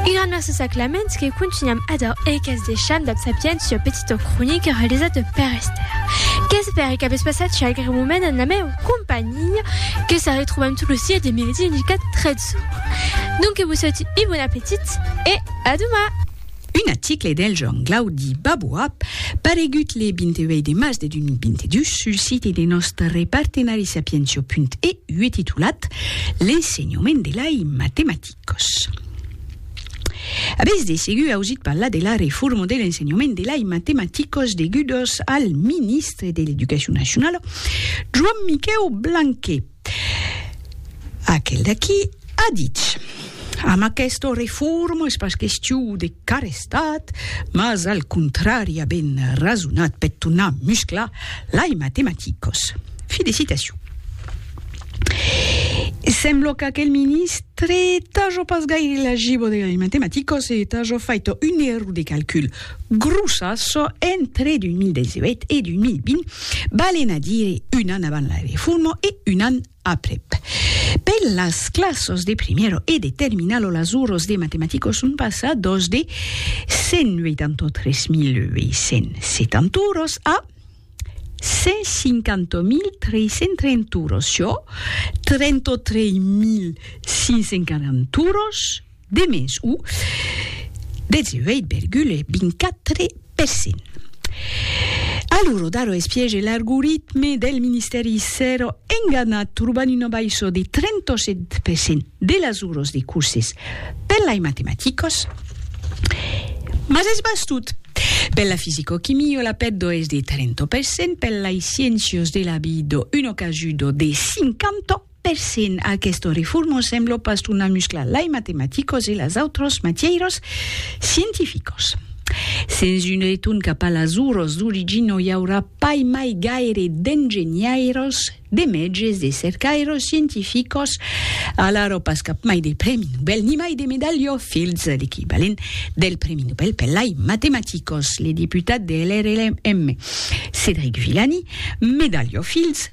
Una merci sa Clamens que contunham ador e qu'es deisham dab sapiens ua petita cronica realizada per Esther. Qu'espère qu'avètz passat un agreable moment en la meu companhia que se retrobam tot lo sieu dimedi en 13 ora. Donque vos saute un bon apetit e a doma! Un aticle del Joan Glaudi Baboap, paregut le 28 de març de 2022 sul site de nòstre partenari Sapientio.eu e titulat L'ensenhament de lei matematicos. Avètz de segur ausit parlar de la reforma de l'ensenhament de lei matematicos degudos al ministre de l'Educacion Nacionala, Joan Miquèu Blanquet. Aquel d'aquí a ditz, Amb aquesta reforma es pas question de carestat, mas al contrari a ben rasonat per tornar musclar lai matematicos. Fi de citacion. Sembla qu'aquel ministre t'aja pas gaire la gibo de lai matematicos e t'aja fait un error de calcul. grosas entre 2018 e 2020, valen a dire un an avant la reforma e un an aprèp. Per las classas de primièro e de terminalo las oras de matematica son passadas de 183.870 oras a 150.330 oras, çò 33.540 oras, De mens o 18,24 per cent. A lo rodar o espiège l'argoritme del ministèri s'èra enganat trobant una baissa de 37 per cent de las oras de curses per lai matematicas, mas es bastut. Per la fisicoquimia la pèrdua es de 30 per cent, per lai sciéncias de la vida una cajuda de 50, Per cent, aquesta reforma sembla pas tornar musclar lai matematicos e las autras matièiras scientificas. Sens un retorn cap a las auras d'origin no i aurà pas mai gaire d'engenhairas, de mètges, de cercairas scientificas, alara pas cap mai de prèmi Nobel ni mai de medalha Fields, l'equivalent del prèmi Nobel per lai matematicos. Le deputat de LRLM, Cédric Villani, Medalha Fields,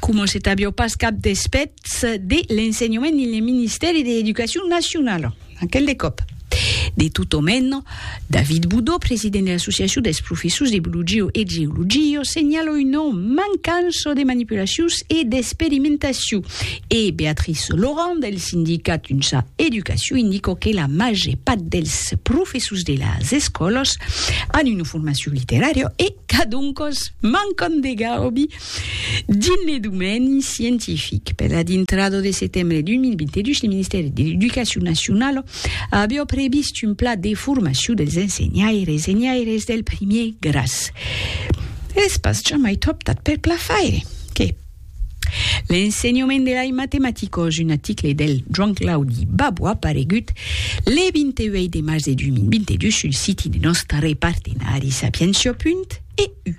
coma se t'avió pas cap despèths de l'ensenhament dins le ministèri de l'Educacion Nacionala, aquel de còp. De tot o meno, David Boudó, president de l'Associacion dels Professors de Biologio e Geologio, senhala una mancança de manipulacions e d'experimentacion, e Béatrice Laurent, del sindicat Unsa Educacion, indica que la màger part dels professors de las escòlas an una formacion literària e Cadoncòs, mancant de garobi, dins le domeni scientific, per la dintrada de setembre 2022, le Ministèri de l'Educacion Nacionala aviá previst un plan de formacion dels ensenhaires, ensenhaires del primièr gràs. Es pas jamai tròp tard per plafaire que, L'ensenhament de lai matematicos, un article del Joan Claudi Babo aparegut le 28 de març de 2022 sul siti de nòstare partenari Sapientia. EU.